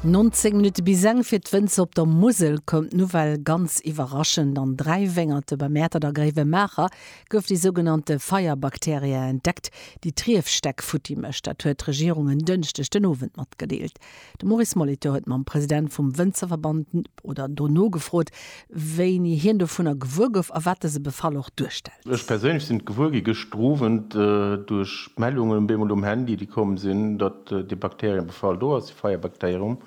19 Minutte bis eng. Fir d'Wënzer op der Musel koum d'Nouvelle ganz iwwerraschend. An dräi Wéngerte bei Mäertert a Gréiwemaacher gouf déi sougenannte Feierbakterie entdeckt, déi d'Riefstäck futti mécht. Dat huet d'Regierung en Dënschdeg den Owend matgedeelt. De Maurice Molitor huet mam President vum Wënzerverband oder do nogefrot, wéini hien dovunner gewuer gouf a wat dëse Befall och duerstellt. Ech perséinlech sinn et gewuer gi gëschter Owend duerch d'Mellungen bemol um Handy, déi komm sinn, datt dee Bakteriëbefall do ass, dee Feierbakterium,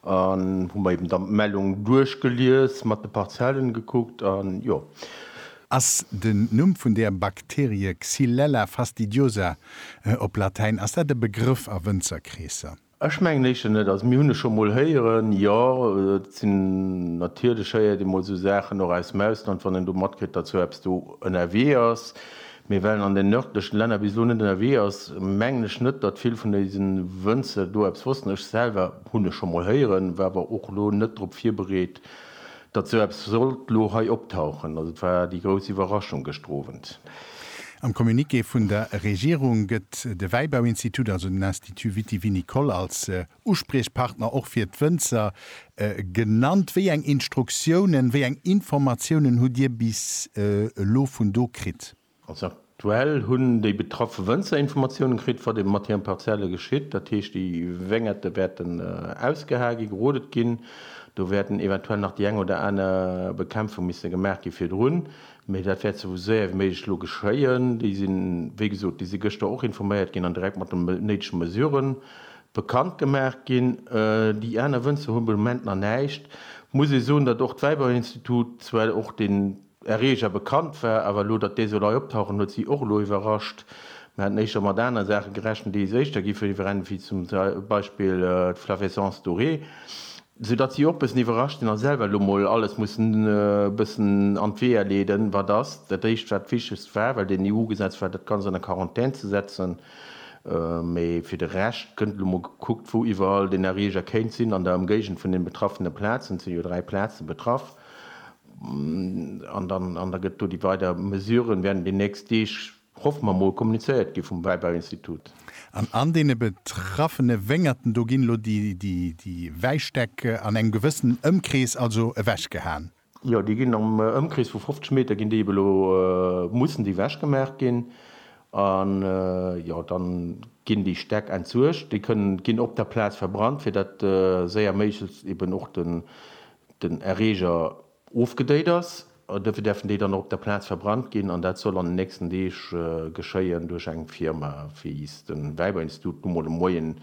an hu mer eben dann d'Mellung duerchgelies, mat de Parzellen gekuckt an jo. Ass den Numm vun där Bakterie Xylella fastidiosa op Latäin, ass dat e Begrëff a Wënzerkreesser? Ech mengen éischter net. Also mir hunn e scho mol héieren, jo, et sinn, natierlech héiert ee mol esou Saachen och aus dem Ausland, wann een do matkritt, datt sou eppes do ënnerwee ass. Mee well en an den nërdlechen Länner bis elo net ënnerwee ass, mengen ech net, datt vill vun dëse Wënzer do eppes wossten. Ech selwer hunn e scho mol héieren, war awer och elo net drop virbereet. Datt esou eppes sollt elo hei optauchen, also et war déi grouss Iwwerraschung gëschter Owend. Am Communiqué vun der Regierung gëtt de Wäibauinstitut, also den Institut vitivinicole, als Uspriechpartner och fir d'Wënzer genannt. Wéi eng Instruktiounen, wéi eng Informatiounen hutt Dir bis elo vun do kritt? Also aktuell hunn déi betraffe Wënzer Informatiounen kritt, wat ebe mat hiren Parzelle geschitt. Dat heescht, déi Wéngerte wäerten ausgehae ginn, gerodet ginn. Do wäerten eventuell nach déi eng oder aner Bekämpfung misse gemaach gi virdrun, mee dat wäert sou séier wéi méiglech elo geschéien. Déi sinn, wéi gesot, déi si gëschter och informéiert ginn an direkt mat de néidege Mesure bekannt gemaach ginn. Déi aner Wënzer hu be Moment nach näischt. Muss ee soen, datt och d'Wäiberinstitut zwar och den, Erreger bekannt war, awer elo, datt dee soll hei optauchen, huet si och elo iwwerrascht. Mir haten éischter mat aner Saache gerechent, déi éischter gi verbrennen, wéi zum Beispill d'Flavescence dorée, soudatt si och bëssen iwwerrascht sinn a selwer elo mol alles mussen e bëssen an d'Weeër leeden, wat ass dat éischt, wat d'Wichtegst war, well den EU-Gesetz war, dat Ganzt an der Quarantän ze setzen. Mee fir de Rescht gëtt elo mol gekuckt, wou iwwerall den Erreger kéint sinn an der Ëmgéigend vun den betraffene Plazen, et sinn jo dräi Plaze betraff. An da gëtt do déi weider Mesuren, wäerten déi nächst Deeg, hoffe mer mol, kommunizéiert gi vum Wäibauinstitut. An an deene betraffene Wéngerten, do ginn elo déi Wäistäck an engem gewëssenen Ëmkrees also ewechgehaen? Jo, déi ginn am Ëmkrees vu 50 Meter ginn déi ebe elo, mussen déi ewechgemaach ginn. An jo, da ginn déi Stäck entsuergt. Déi kënnen, ginn op der Plaz verbrannt, fir datt séier méiglechst eben och den Erreeger ofgedéit ass. Duerfir däerfen déi dann och op der Plaz verbrannt ginn an dat soll an den nächsten Deeg geschéien duerch eng Firma, wéi s de Wäiberinstitut nu mol de Moien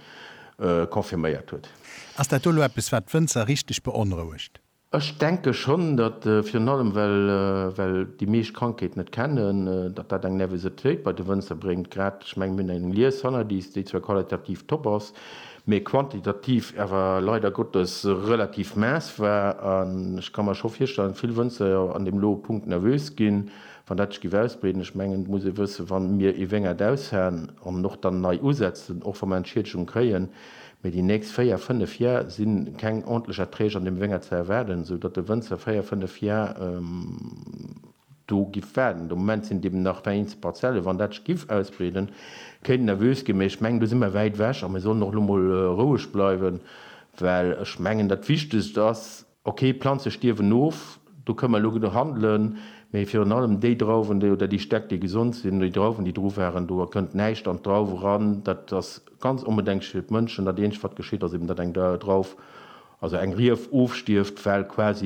confirméiert huet. Ass dat elo eppes, wat d'Wënzer richteg beonrouegt? Ech denke schonn, datt, virun allem well déi meescht d'Krankheet net kennen, datt dat eng Nervositéit bei de Wënzer bréngt. Grad, ech mengen, mir hunn eng Lies hannerlies, déi zwar qualitativ top ass, mee quantitativ awer leider Gottes relativ maess war. An ech ka mer scho virstellen, vill Wënzer an deem lo Punkt nervös ginn, wann dat sech géif ausbreeden. Ech mengen, et muss ee wëssen, wa mir ee Wéngert aushaen an och dann nei usetzen, och wa mer Entschiedegungen kréien, mee déi nächst véier, fënnef Jar si keng ordentlech Erträg an deem Wéngert ze erwaarden, esou datt de Wënzer véier, fënnef Jar, Do giff waarden. De Moment sinn et eben nach der eenzel Parzellen. Wann dat sech giff ausbreeden, kéint nervös ginn. Mee ech mengen, do si mer wäit ewech a mir sollen och elo mol roueg bleiwen, well ech mengen, dat Wichtegst ass, okay, d'Planze stierwen of, do kënne mer elo handelen, mee virun allem déi Drauwen oder déi Stäck, déi gesond sinn, oder déi Drauwen, déi dru waren, do kënnt näischt an d'Drauw eran. Dat ass ganz onbedenklech fir d'Mënschen. Dat eenzegt, wat geschitt, ass eben, datt eng Drauf, also eng Rief ofstierft, well quasi,